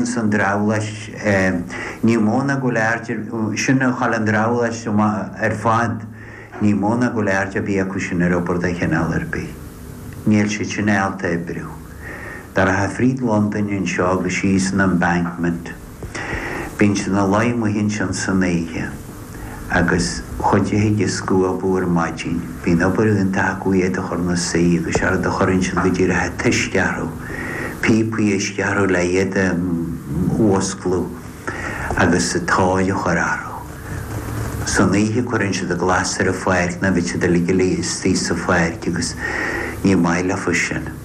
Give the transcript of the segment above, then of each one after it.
Ins an drabhlás, ní mó ná go lear, sin a chaill an drabhlás ar fad, ní mó ná go bhfuil aird ar bith acu sin ar obair de chineál ar bith. Níl siad sin ábalta oibriú. Dá rachfá fríd Londain anseo agus síos an Embankment, bíonn siad ina luí amuigh ansin san oíche. agus an chuid a thig ag scuabadh ar maidin. Bíonn obair iontach acu iad a chur 'na suí, agus séard a chuireann siad go díreach a' t-uisce orthu, píopaí uisce orthu le hiad a mhuscladh agus a' tóir a chur orthu. San oíche cuireann siad a' glas ar a' pháirc, nó bheadh siad uilig 'na luí istigh sa pháirc agus ní maith leofa sin.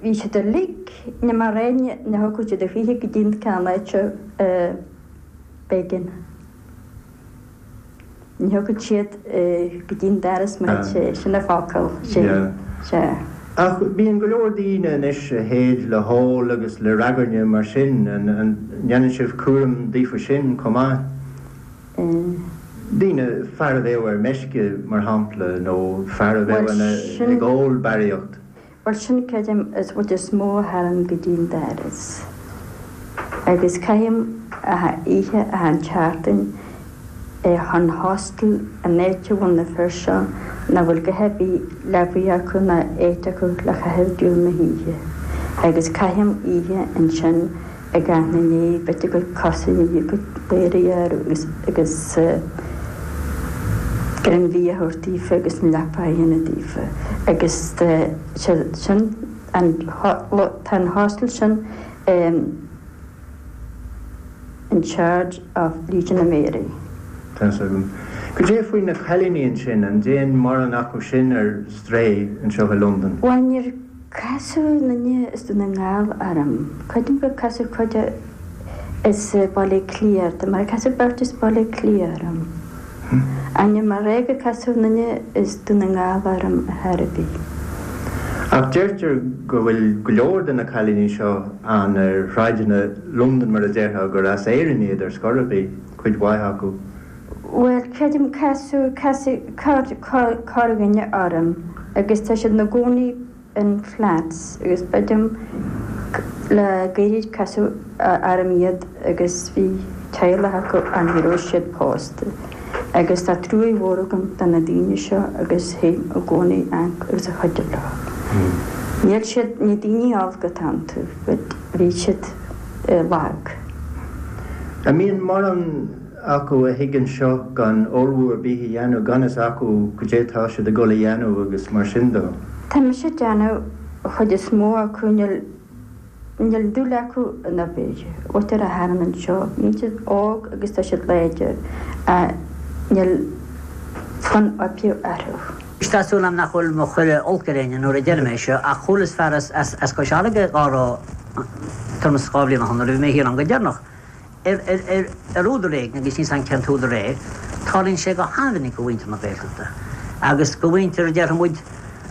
Bhí siad uilig, ní mar aon ní a thógfadh siad a shaothar go dtí an ceann eile seo, b'éigean. Ní thógfadh siad go dtí an dara smaointe é, sin an focal, sin, sea. Ach bíonn go leor daoine anois a théid le hól agus le ragairne mar sin, an ndéanann sibh cúram daofa sin chomh maith? Daoine, fear a bheadh ar meisce, mar shampla, nó fear a bheadh ag ól barraíocht. Bhuel, sin, creidim, an chuid is mó a tharraing go dtí an doras. Agus caithim achan oíche, achan tseachtain, ins an Hostel an áit a bhfuil na fir seo nach bhfuil go haibí leabaidh acu ná áit acu le caitheamh diail na hoíche. Agus caithim oíche ansin. Ag amharc ina ndiaidh b'fhite go cosaíodh iad go léir a dhearadh agus greim bia a thabhairt daofa agus an leaba a dhéanamh daofa agus tá an hostel sin in charge of Legion of Mary. Tá sé agam. Goidé faoi na cailíní ansin, an dtéann mórán acu sin ar strae anseo i Londain? Bhain Casadh na nithe is do na ngeall orm. Creidim gur casadh cuid as Baile Átha Cliath orthu, mar casadh beirt as Baile Átha Cliath orm. Ainm mar Ghaeilge casadh aon duine as Dún na nGall orm ar chor ar bith. Ach deirtear go bhfuil go leor de na cailíní seo ann ar shráideanna Londan mar a déarfá gur as Éirinn iad ar scor ar bith, cuid mhaith acu. Bhuel, creidim casadh, casadh corrdhuine orm agus tá siad ina gcónaí in flats agus b'ait liom le gairid casadh orm iad agus bhí teaghlach acu ann ní raibh siad pósta agus tá truaí mhór agam do na daoine seo agus théim i gcónaí ann agus ag cuidiú leo. Níl siad, ní daoine olca atá iontu but bhí siad lag. An mbíonn mórán acu a thigeann anseo gan ullmhú ar bith a dhéanamh, gan fhios acu goidé tá siad ag dul a dhéanamh agus mar sin de. Tá mise ag déanamh amach an chuid is mó acu, níl dúil acu in obair. Ó tar siad anall anseo, bíonn siad óg agus tá siad láidir, ach níl fonn oibre orthu. Tá súil agam nach bhfuil mé ag cur oilc ar éinne nuair a deirim é seo, ach chualas fear as Cois Fharraige dhá rá tuairim is dhá bhliain ó shoin nuair a bhí mé thiar ann go deireanach, ar údar éigin, agus níl 's agam cén t-údar é, tarlaíonn sé go han-mhinic do mhuintir na Gaeltachta, agus do mhuintir, déarfaimid,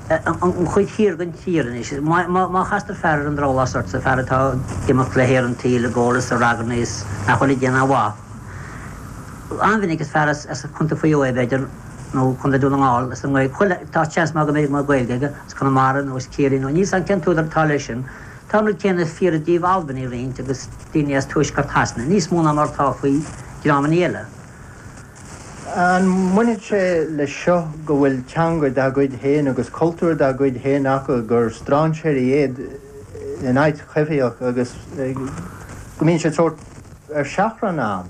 ón gcuid thiar den tír anois. Má chastar fear ar an drabhlás ortsa, fear atá ag imeacht le haer an tsaoil i gcónaí, sa ragairne is nach bhfuil ag déanamh aon mhaith, an-mhinic is fear as Co. Mhaigh Eo é, b'fhéidir, nó Co. Dhún na nGall, as an nGaeltacht, tá seans maith go mbeidh Gaeilge aige, as Conamara nó as Ciarraí nó níl 's agam cén t-údar atá leis sin. Tá an rud céanna fíor i dtaobh Albanaigh roinnt agus daoine as Tuaisceart Shasana, níos mó ná mar atá faoi dhreamanna eile. An mbainfeadh sé leis seo go bhfuil teanga dá gcuid féin agus cultúr dá gcuid féin acu, gur strainséirí iad in áit choimhthíoch agus go mbíonn siad sórt ar seachrán ann?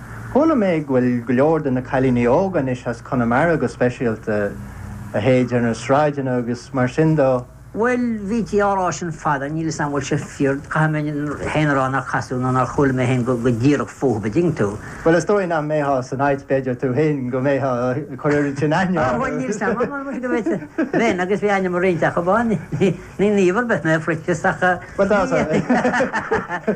Chuala mé go bhfuil go leor de na cailíní óga anois as Conamara go speisialta, a théid ar na sráideanna agus mar sin de. Bhuel, bhítí á rá sin fada, níl 'fhios a'm an bhfuil sé fíor, caithfidh mé féin a rá nár casadh nó nár chuala mé féin go díreach fúthab, a' dtuigeann tú. Bhuel, is dóigh nach mbeitheá san áit, b'fhéidir, tú fhéin, go mbeitheá a' cur oiread sin aithne orthu. Á, bhuel, níl 'fhios a'm, ach anois b'fhéidir go bhféadfadh, bheinn agus bhí ainm ar roinnt acub ann, ní naomh ar bith mé a Phroinsias ach. Bhuel, tá.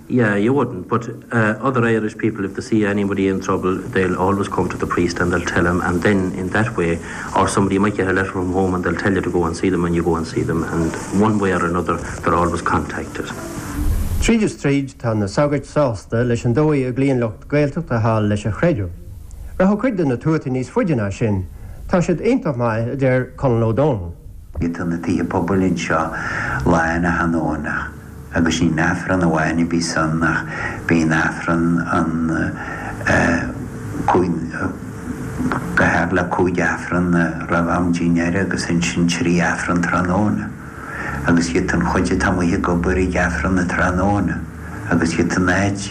Yeah, you wouldn't, but eh other Irish people if they see anybody in trouble they'll always come to the priest and they'll tell him and then in that way or somebody might get a letter from home and they'll tell you to go and see them and you go and see them and one way or another they're always contacted. Tríd is tríd, tá na sagairt sásta leis an dóigh a gcloíonn lucht Gaeltachta thall leis an chreideamh. Rachadh cuid de na tuataí níos faide ná sin, tá siad iontach maith, a deir Conal Ó Domhnaill. Tá na tithe pobail anseo lán achan Domhnach. agus ní Aifreann amháin a bhíos ann ach bíonn Aifreann ann cúig go háirithe cúig Aifreann ann roimh am dinnéara agus ansin trí Aifreann tráthnóna agus théid an chuid atá amuigh ag obair chuig Aifreann an tráthnóna agus tá an áit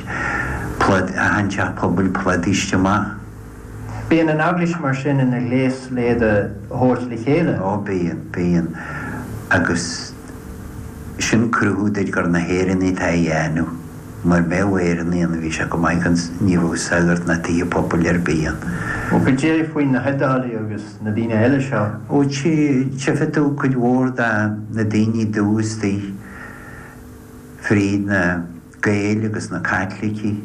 plód achan teach pobail plódaithe amach. Bíonn an Eaglais mar sin ina ghléas le iad a thabhairt le chéile. Ó bíonn, bíonn agus. sin cruthú duit gur na hÉireannaigh atá á dhéanamh, mura mbeadh Éireannaigh ann, bhí sé chomh maith gan sagart ná tithe pobail ar bith ann. Ó goidé faoi na hIodáiligh agus na daoine eile seo? Ó tchifidh tú cuid mhór de na daoine dubha istigh fríd na. Gaeil agus na Caitlicigh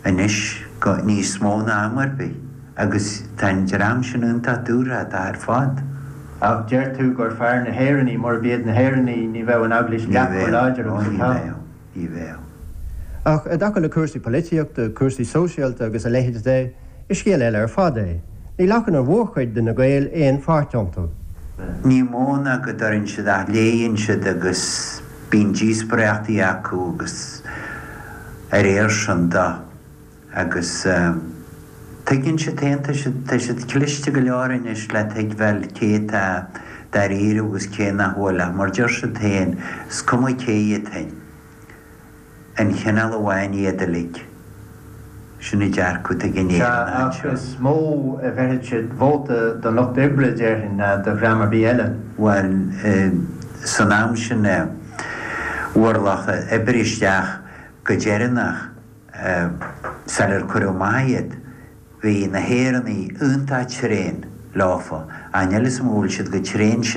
anois go, níos mó ná am ar bith, agus tá an dream sin iontach dúthrachtach ar fad. Ach deir tú gur fearr na hÉireannaigh, murab iad na hÉireannaigh ní bheadh an Eaglais leath chomh láidir agus atá. Ní bheadh, ó ní bheadh, ní bheadh. Ach i dtaca le cúrsaí polaitíochta, cúrsaí sóisialta agus a leithéid de, is scéal eile ar fad é. Ní ghlacann an mhórchuid de na Gaeil aon pháirt iontu. Ní mó ná go dtabhrann siad ath léigheann siad agus. Bíonn díospoireachtaí acu agus dá réir sin de agus tuigeann siad féin, tá siad, tá siad cliste go leor anois le tuigbheáil cé tá dáiríre agus cé nach bhfuil ach mar deir siad féin, is cuma cé iad féin. Aon chineál amháin iad uilig. Sin an dearcadh duit in Éirinn anseo. Ach is mó a bheirfeadh siad vóta don Lucht Oibre, déarfainn, ná do dhream ar bith eile. Bhuel, san am sin a bhfuair lucht oibre isteach go deireanach. Sal ar cuireadh amach iad, bhí na hÉireannaigh iontach tréan, leofa. Níl a fhios agam an bhfuil siad chomh tréan sin